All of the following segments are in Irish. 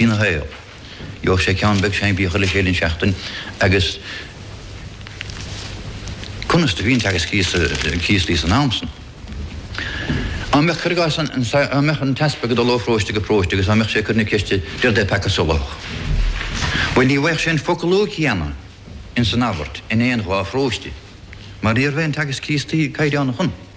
ina shaol. Gheobhadh sé ceann beag seinnfhíoch chuile chéad an seachtain agus conas do bhí an teagasc Críostaí san am san? Á mbeadh cuir i gcás an, á mbeadh an t-easpag ag dul ó phróiste go próiste agus á mbeadh sé ag cur na ceiste Dé rud é peaca solathach? Bhuel ní bhfaigheadh sé an foclú céanna in san abairt in aon dhá phróiste mar ní raibh aon teagasc Críostaí caighdeánach ann.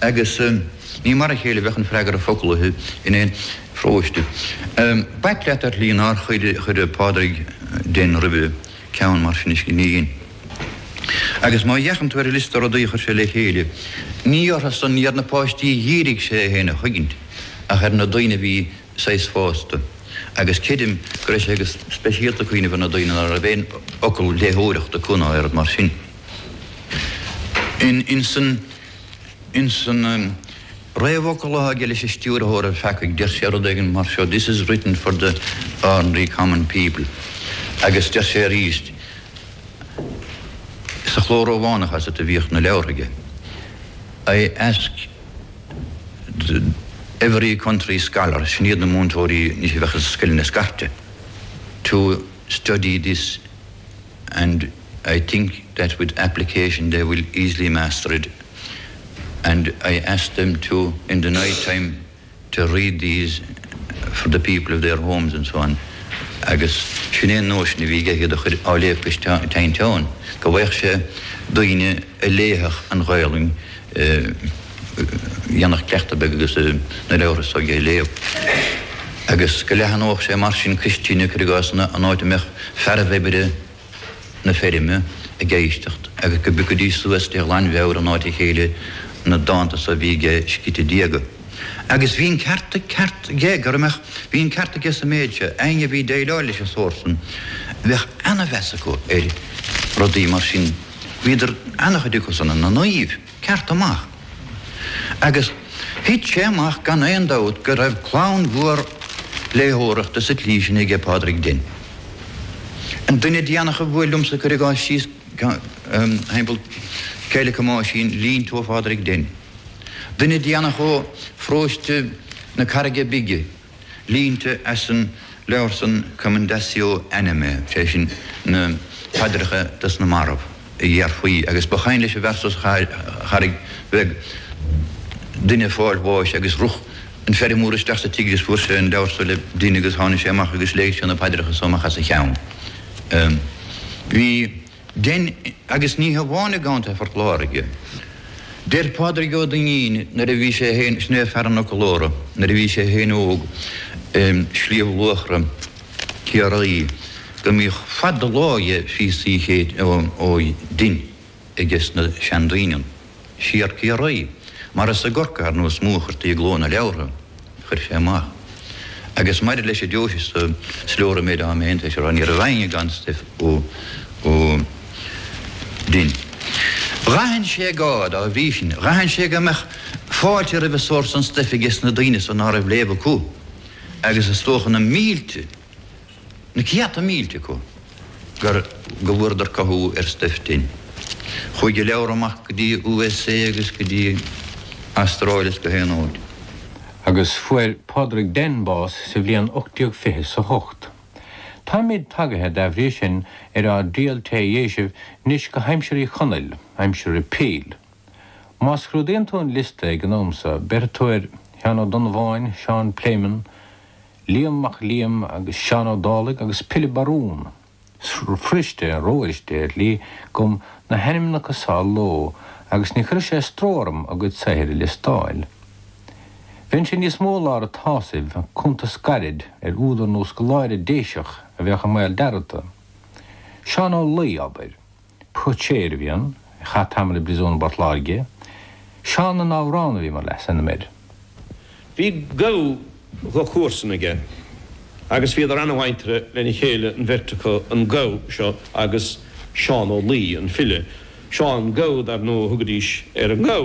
agus ní mar a chéile a bheadh an freagra foclaithe in aon pharóiste. B'ait leat, ar shlí, nár chuir Pádraig Denn roimhe ceann mar sin i scríbhinn. Agus má fhéachann tú ar an liosta rudaí a chuir sé le chéile, ní orthusan ar na páistí a dhírigh sé é féin a chuigint, ach ar na daoine a bhí saghas fásta, agus creidim go raibh sé go speisialta ag cuimhneamh ar na daoine ná raibh aon fhocal léitheoireachta acu ná oiread mar sin. In san réamhfhocal atá aige leis an Stiúrthóir an Pheacaigh, deir sé rud éigin mar seo, This is written for the ordinary common people. Agus deir sé arís sa chló Rómhánach is ea a bhíodh na leabhartha aige, I ask every country scholar, sin iad na múinteoirí anois a bheadh i scoileanna scairte, to study this. and I think that with application they will easily master it and I ask them to in the night time to read these for the people of their homes and so on agus sin é an nóisean a bhí aige iad a chur á léamh cois teinteáin go bhfaigheadh sé daoine a léifeadh an Ghaolainn a dhéanfadh cleachtadh beag agus na leabhartha so aige a léamh, agus go leathanódh sé mar sin cois tine, cuir i gcás, an áit a mbeadh fearaibh oibre na feirme ag éisteacht, agus go bpiocfaidís suas de ghlanmheabhair in áit a chéile na dánta so a bhí aige scríte diaga. Agus bhí an ceart aige, go maith, bhí an ceart aige sa méid seo, éinne a bhí ag déileáil leis an sórt san, bheadh ana-mheas acu ar rudaí mar sin. Bhíodar ana-chuid acu san ina naoimh cearta amach. Agus thit sé amach gan aon dabht go raibh clann mhór léitheoireachta sa tslí sin aige Pádraig Denn. An duine déanach a bhuail liomsa cuir i gcás síos timpeall Coill 'ic Thomáisín línte ó Phádraig Denn. Duine déanach ó Pharóiste na Carraige Bige. línte as an leabhar san Commendatio Animae, sé sin, na paidreacha dos na marbh, a déarfaí, agus ba chuimhin leis an bhfear so sa Charraig Bheag duine ag fáil bháis agus rith an feirmeoir isteach sa tigh agus fuair sé an leabhar so le Denn agus tháinig sé amach agus léigh sé na paidreacha so amach os a cheann. Bhí. Denn, agus ní hamháin i gContae Phort Láirge. Deir Pádraig Ó Duinnín nuair a bhí sé féin, sin é Fear an Fhoclóra, nuair a bhí sé féin óg i Sliabh Luachra, Ciarraí, go mbíodh fad do láimhe phíosaí chéid ó Denn aige sna seandaoine. siar Ciarraí, mar is i gCorcaigh ar ndóigh is mó a chuirtí i gcló na leabhartha a chuir sé amach. Agus maidir leis an deoise so is leor an méid atáim tar éis a rá, ní raibh éinne gan stuif ó Denn. Dh'aithin sé go, dá bhrí sin, dh'aithin sé go mbeadh fáilte roimh an sórt san stuif aige sna daoine san a raibh léamh acu, agus is dócha na mílte, na céadta mílte acu gur go bhfuaireadar cothú ar stuif Denn. Chuaigh a leabhair amach go dtí USA agus go dtí Astráil is gach aon áit. Agus fuair Pádraig Denn bás sa bhliain 1828. Táimid tagaithe, dá bhrí sin, ar ár dtriall tré Dhéisibh nois go haimsir Uí Chonaill, aimsir Repeal. Má scrúdaíonn tú an liosta ag an am so, béarfaidh tú ar Sheán Ó Donnabháin, Seán Pléimeann, Liam Mac Liam agus Seán Ó Dálaigh agus Pilib Barún. Is fuiriste anois, Déadlie, dhom na hainmneacha seo a lua agus ní chuirfeadh sé stró orm a gcuid saothair a liostáil. Bheadh sé níos mó i lár a tsásaimh ach cuntas gairid ar údar nó scoláire Déiseach a bheadh i mbaol dearmadta. Seán Ó Laoi, abair. Poitéir a bhí ann, chaith tamall i bpríosún i bPort Láirge. Seán na nAmhrán a bhí mar leasainm air. Bhí gabha de chomharsain aige agus bhíodar ana-mhuinteartha lena chéile an bheirt acu, an gabha seo agus Seán Ó Laoi, an file. Seán Gabha, dar ndóigh, a thugaidís ar an ngabha.